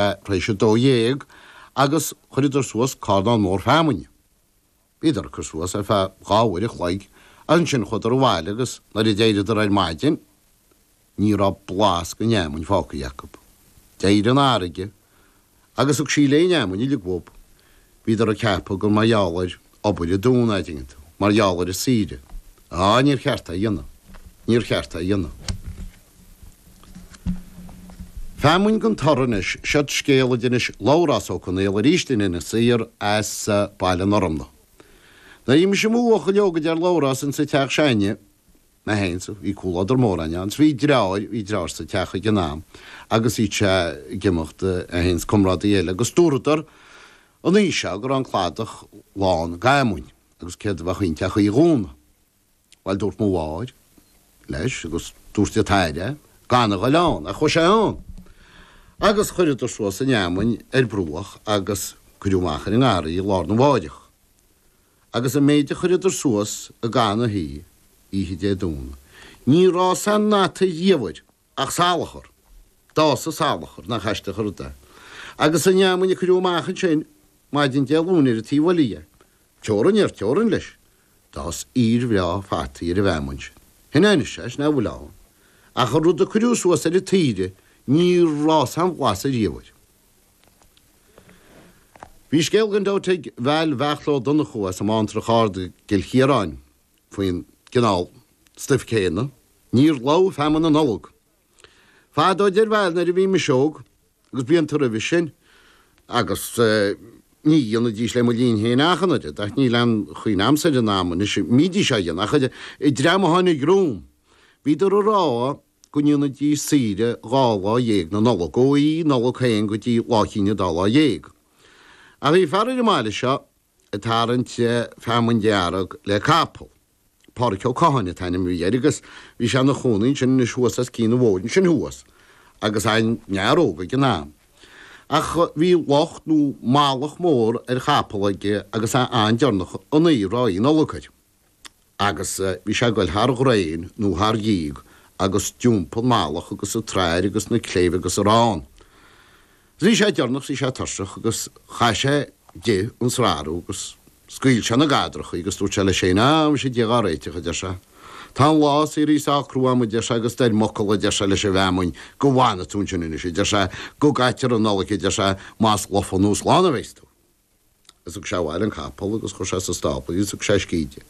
tar éis a dó dhéag agus chuireadar suas carnán mór feamainne. Bhíodar ag cur suas ar feadh dhá uair a chloig agus ansin chuadar abhaile agus nuair a d'éiríodar ar maidin ní raibh blas den fheamainn fágtha acu. D'éirigh an fharraige agus thug sí léi an fheamainn uilig uathu. Bhíodar ag ceapadh gur mar gheall ar. obair an Domhnaigh a dhéanamh mar gheall ar an tsaoire. Á, níor cheart é a dhéanamh. Níor cheart é a dhéanamh. Feamainn gan toradh anois, seo scéal a d'inis Labhrás Ó Conaola arís dúinn in Inis Oírr as Baile an Fhormna. Nuair a bhí mise i mo bhuachaill óg a deir Labhrás insa teach s'againne, mé féin, is bhí comhluadar mór ann, ann. Bhí deartháir, bhí deartháir sa teach ag an am agus bhíodh sé ag imeacht é féin is comrádaí eile agus dúradar an oíche seo go raibh an cladach lán d'fheamainn agus céard a bheadh inti ach oíche Domhnaigh. Bhuel, dúirt mo mháthair leis agus dúirt an t-athair gan a ghoil ann ach chuaigh sé ann agus chuireadar suas an fheamainn ar bruach agus cuireadh amach ar an ngarraí í lá arna mháireach. agus an méid a chuireadar suas i gcaitheamh na hoíche Dé Domhnaigh, níor fhás aon fhata ariamh air ach salachar. D'fhás an salachar, nach aisteach an rud é, agus an fheamainn a cuireadh amach ansin maidin Dé Luain ar an taobh eile dhe, teorainn ar teorainn leis, d'fhás aoir bhreá fataí ar an bhfeamainn sin. Sin anois é, sin é a bhfuil ann. Ach an rud a cuireadh suas ar an tsaoire, níor fhás aon bhlas ariamh air. Bhí scéal againn do tigh Val Bheartla Ó Donnchú as an mBantrach Ard i gCill Chiaráin faoin gcineál stuif céanna, níor lobh feamainn na Nollag fadó, a deir Val, nuair a bhí mise óg, agus blianta roimhe sin, agus ní dhéanaidís le mo linn féin ach an oiread, ach níl aon chuimhne a'msa ar an am anois a mbídís á dhéanamh ach an dream a tháinig romham, bhíodar ag rá. go ndéanfaidís saoire dhá lá dhéag na Nollag ó Oíche Nollag féin go dtí Lá Chinn Dá Lá Dhéag. Ach bhí fear ar an mbaile seo ag tarraingt feamainn dhearg le capall. Pádhraic Ó Catháin an t-ainm a bhí air agus bhí sé 'na chónaí ansin anois thuas os cionn an bhóthair ansin thuas agus é ina fhear óg ag an am. Ach bhí lucht nó malach mór ar chapall aige agus é an-deireanach an uair, Oíche Nollag air. agus bhí sé ag goil thar dhraein nó thar dhíog agus d'iompaigh an malach agus an tsrathair agus na cléibh agus a raibh ann. Agus bhí sé deireanach bhí sé tuirseach agus chaith sé di an srathrú agus scaoil sé na gadrachaí agus dúirt sé leis féin, á, muise Dia dhá réiteach, a deir sé, tá an lá saothraithe sách crua a'm, a deir sé, agus dar m'fhocal, a deir sé, leis an bhfeamainn go bhfanfaidh tú ansin anois, a deir sé, go gcaitear an Nollaig, a deir sé, más lofa nó slán a bheas tú. Is thug sé abhaile an capall agus chuir sé sa stábla í is thug sé uisce di.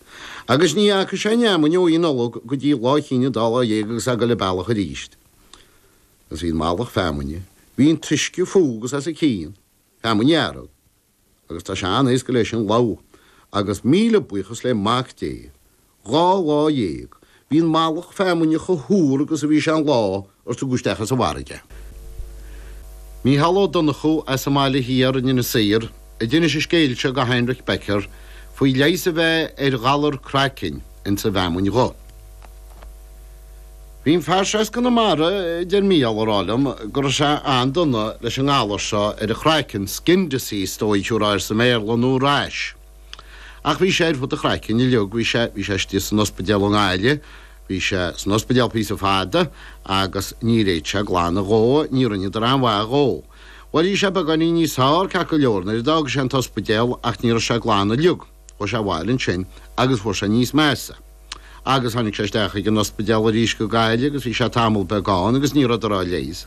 Agus ní fhaca sé an fheamainn ó Oíche Nollag go dtí Lá Chinn an Dá Lá Dhéag agus é ag goil an bealach aríst. Agus bhí an mallach feamainne, bhí an t-uisce fúithi agus as a cionn, feamainn dhearg. Agus tá sé an-éasca léi sin lobhadh agus míle buíochas le Mac Dé Dhá lá dhéag. Bhí an mallach feamuinne cho h-úr agus a bhí sé an lá ar tugadh isteach as an bhfarraige. Mícheál Ó Donnchú as an mBaile Thiar in Inis Oírr a d'inis an scéal seo go Heinrich Becker faoi leigheas a bheith ar ghalar craicinn ins an bhfeamuinn dhubh. Bhí an fear seo as Conamara a deir Mícheál ag rá liom go raibh sé an-dona leis an ngalar seo ar a chraiceann, skin disease is dóigh thiubhrá air sa mBéarla, nó rash. Ach bhí sé ar fud an chraicinn uilig, bhí sé, bhí sé istigh san ospidéal i nGaillimh, bhí sé san ospidéal píosa fada agus níor fhéad sé glanadh dhó, ní rinneadar aon mhaith dhó. Bhuel, bhí sé beagáinín níos fearr, ceart go leor, nuair a d'fhága sé an t-ospidéal ach ní raibh sé glan uilig, chuaigh sé abhaile ansin agus fuair sé níos measa. Agus tháinig sé isteach chuig an ospidéal arís go Gaillimh agus bhí sé tamall beag ann agus ní rabhadar á leigheas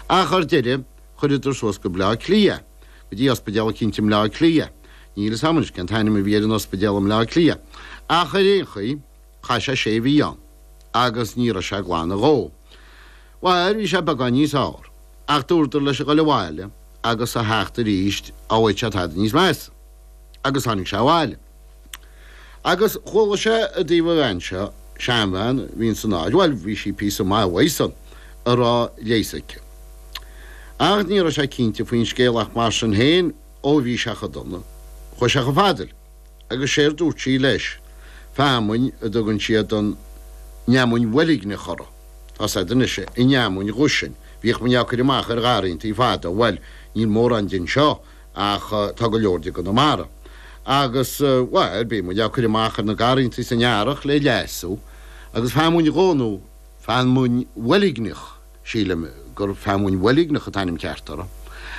ach ar deireadh chuireadar suas go Bleá Cliath. go dtí Ospidéal eicínt i mBleá Cliath. Níl fhios a'm anois cén t-ainm a bhí ar an ospidéal i mBleá Cliath, ach ar aon chaoi, chaith sé sé mhí ann, agus ní raibh sé ag glanadh dhó. Bhail, bhí sé beagán níos fheárr, ach dúradar leis a ghoil abhaile agus a theacht aríst, dhá bhfaigheadh sé tada níos measa. Agus tháinig sé abhaile. Agus chuala sé i dtaobh an bhean seo, seanbhean a bhí insan áit, bhuel, bhí sí píosa maith uaidh san, go raibh leigheas aici. Ach ní raibh sé cinnte faoin scéal ach mar sin féin, ó bhí sé cho dona, chuaigh sé cho fada léi. Agus séard dúirt sí leis, feamainn a dtugann siad an fheamainn bhoilgneach uirthi, tá fhios a'd anois, an fheamainn dhubh sin, bhíodh muinn á cur amach ar gharraíontaí fada, bhuel, níl mórán de anseo, Ach tá go leor de i gConamara. Agus, bhuel, bíonn muid á cur amach ar na garrantaí san earrach le leasú. Agus feamainn dhubh nó feamainn bhoilgneach, sílim gur feamainn bhoilgneach an t-ainm ceart uirthi.